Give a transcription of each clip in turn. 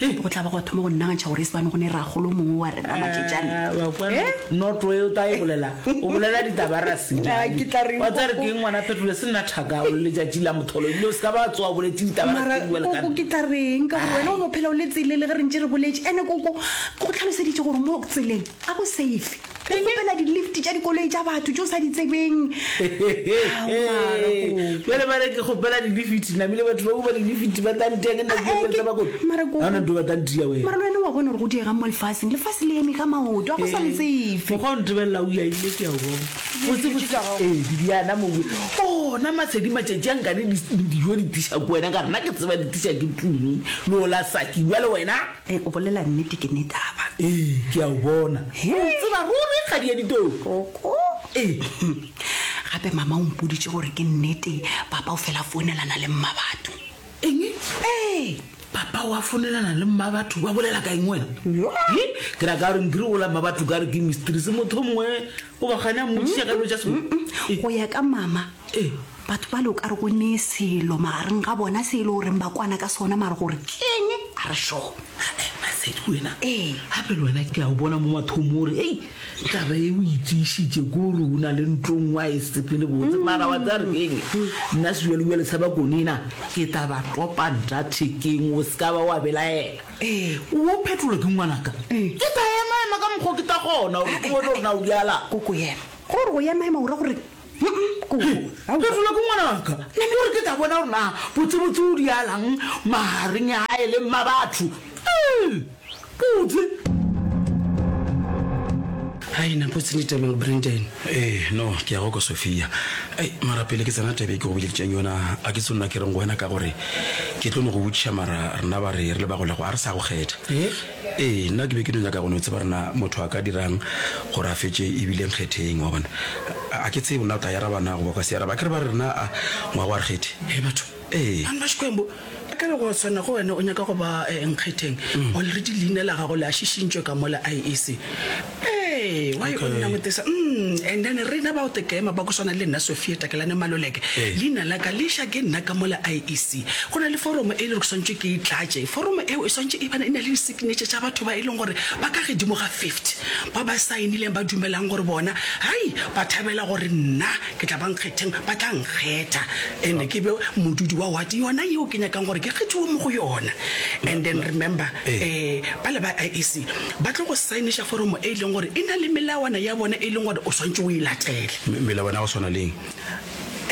Hei, go tla ba gwa thoma go nnagantšha gore e se bane go ne ragolo mongwe wa rena Maketšane. Ah, wa kwa Eh? noto e o ta e bolela o bolela ditaba ra se Ah, ke tla reng, wa tsa re Koko? keng ngwana phetole se nna thaka o le letšatši la motholo ebile o se ka ba tsoa boletse ditaba ra Mara, se bua koko ke lekana tla reng ka gore wena o no phela o le tsele le ge re ntše re boletše ene koko go tlhaloseditše gore mo tseleng a go safe Go kgopela di-lift tša dikoloi tša batho tše o sa di tsebeng. Bjale ba re ke kgopela di-lifiti, namile batho ba kopa di-lifiti, ba tla nteya ke nna ke Eh, ke- tsa bakone. mara ko- Ha ona ntho ba tla nteya wena. Mara le wena wa bona gore go diegang mo lefaseng. Lefase le eme ka maoto, a go sa le tsefe. Mokgwa o ntebelela o yaile ke a o bona. Botse botse tsa gago. Ee, Bibiana mowe. Ona matshedi matšatši a nkane di- dijo di tisa ko wena ka rena ke tseba di tisa ke tlung. Lola saki bjale wena. Ee, o bolela nnete, ke Nethaba. Ee, ke a o bona. O ntseba ruri, kgadi ya ditoo. Koko. Ee. Gape mama o mpoditše gore ke nnete papa o fela founelana le Mmabatho. Eng? Ee. Papa wa founelana le Mmabatho? Ba bolela ka eng wena? Yo. He, ke ra ka gore nkiri gola Mmabatho ka re ke mistress motho mongwe o ba gane a mmotšiša ka dilo tša sekolo. Go ya ka mama, Ee, batho bale o ka re go ne selo magareng ga bona se e le goreng ba kwana ka sona mare gore keng a re sho masedi wena ee gape le wena ke a o bona mo mathomo ore ei taba e o itseisitse ko ore o na le ntlong wa e sepele botse mm. mara wa tsaya re keng nna sebjalebjale sa ba konena ke taba topa nta thekeng o se ka ba wa belaela ee o phetola ke ngwanaka ee. ke ta emaema ka mokgwa ke ta gona gore ke bone gore na o bjala koko yena gore go emaema o ra gore Phefola ko ngwanaka, ke gore ke tla bona gore na botsebotse o dialang magareng a e leng ma batho. Putse. Hai na putse ni teme Brandon. Eh no ke ya go ko Sofia. Ai mara pele ke tsena tebe ke go biditseng yona a ke tsonna ke reng go wena ka gore ke tlo no go botšiša mara rena ba re re le ba go lego a re sa go kgetha. Eh? Ee, nna ke be ke no nyaka go no tseba gore na motho a ka dira'ng gore a fetše e bile nkgetheng. Wa bona? A, a ke tsebe na o tla e araba na goba o ka se e araba. Akere ba re na a ngwaga wa rekgethhe? Hei batho! Ee. Bana ba Xikwembu, ka re go swana go wena o nyaka go ba nkgetheng, already leina la gago le a šišintšwe ka mola IEC. Ee, why o nna motesa mm, and then rena bao tekema ba go swana le nna sophia takelane maloleke Ee. leina la ka le ša ke nna ka mola iec go na le foromo e le gore ke swantšwe ke e tlatše foromo eo e swantše e bana e na le disignature tša batho ba e leng gore ba ka gedimo ga 50 ba ba saenileng ba dumelang gore bona hai ba thabela gore nna ke tla ba nkgetheng ba tla nkgetha and ke be modudi wa wate yona yeo ke nyakang gore ke kgethiwe mo go yona and then remember Ee. um ba le ba iec ba tlo go saeniša foromo e e leng gore e na le melawana ya bona e leng gore o swantše o e latele. Me, melawana ya go swana le eng?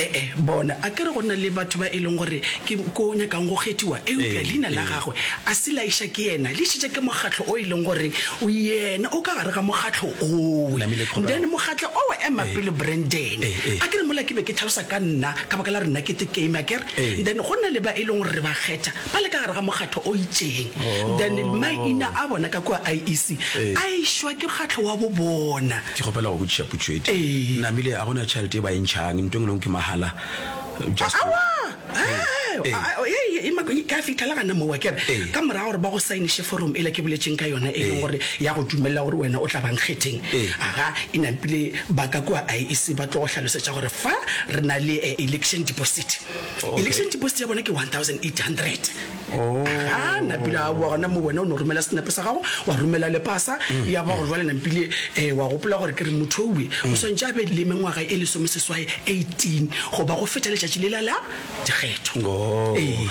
E-e, bona, a ke re go na le batho ba e leng gore ke ko o nyakang go kgethiwa, eupša Ee, leina la ee. gagwe a se laiša ke yena, le išitše ke mokgatlo o e leng gore yena o ka gare ga mokgatlo owe. Namile Qhobela. Then mokgatlo owe, ema Ee. pele Brandon, Ee, ee. a ke re mola ke be ke tlhalosa ka nna ka baka la re nna ke the kame, a ke re, Ee. then go na le ba e leng gore re ba kgetha, ba le ka gare ga mokgatho o itšeng then maina a bona ka kua IEC a išwa ke mokgatlo wa bo bona. Ke kgopela go botšiša potšo e tee. Ee. Namile, a go na tšhelete e ba e ntšhang? Nto e nngwe le e nngwe ke mahala? Just. Aowa! Ee. Ee. A, a, ee, e mako, ke a fihlela gana moo, wa ke re, Ee. ka morago gore ba go sainiše foromo ela ke boletšeng ka yona, e leng Ee. gore ya go dumelela gore wena o tla ba nkgetheng, Ee. aga, e nampile ba ka kua IEC ba tlo go hlalosetša gore fa re na le, eh, election deposit. election deposit ya bona ke 1800 ga na pila a boa gona mo wena o ne o romela senape sa gago wa romela le pasa mm. ya ba gore jwale nampile um wa gopola gore ke re motho owe o mm. swantse a be le mengwaga e lesome seswae 18 goba go feta letšatši lela la dikgetho oh. ee.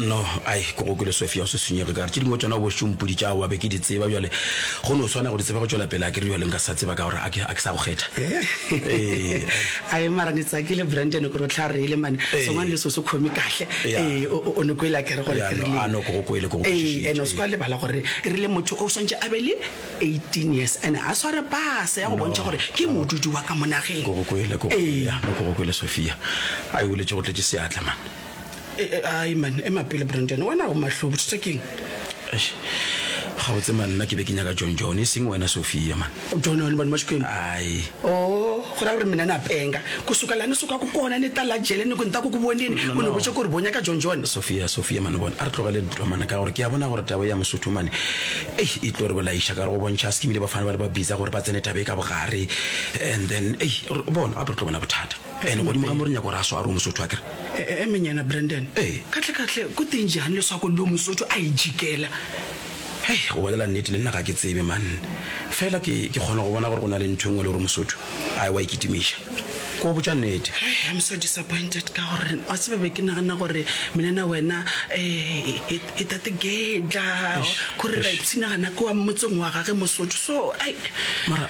no ai ko go kele sofia o se senyege kare tse dingwe tsona bošompodi tša wa be ke di tseba bjale go ne o tshwana go di tseba go tšwela pele a ke re bjaleng ka sa tseba ka gore a ke sa go kgetha eh. ee. Ae mara ni tsakile Brandon gore o tla rile man songwane le so se khome kahle ee o ne kwele akere gore ke rile ano go kwele go ee ene o se kwa lebala gore e rile motho o swantse a be le 18 years ene a sware pase ya go bontšha gore ke modudi wa ka monageng go kwele go ee go kwele Sophia a e wele tšo go tletse seatla man ai man ema pele brandon wena o mahlo bothata keng Eish, gabotse man nna ke be ke nyaka john john e seng wena sophia man jona le bana ba xikwembu ai o go ra gore mina na penga ku suka lani suka ku kona ni ta la jele ni ku ni ta ku ku vonini No, no, u ni no. vutse ku ri bonya ka john john sophia sophia mane bona a re tlogele dintwa mana ka gore ke a bona gore tabo ya mosotho mane ei e tlo re bolaiša ka gore go bontšha a se ke bile ba fana ba le ba bitsa gore ba tsene tabo e ka bogare and then ei re- bona gape re tlo bona bothata Ene godimo ga mo re nyako re a swaro mosotho a kere. Emenyana Brandon. Ee. Katlekatle ko teng jang leswako leo mosotho a e jikela? Hei, go bolela nnete le nna ga ke tsebe man. Fela ke, ke kgona go bona gore go na le ntho e nngwe le gore mosotho a ewa e kitimiša. Ke go botša nnete. Hei, I'm so disappointed ka gore wa tseba be ke nagana gore menana wena eh, e, e tate Gedla, Eish, gore eish. Raipsina gana ke wa motseng wa gage mosotho so ai. Mara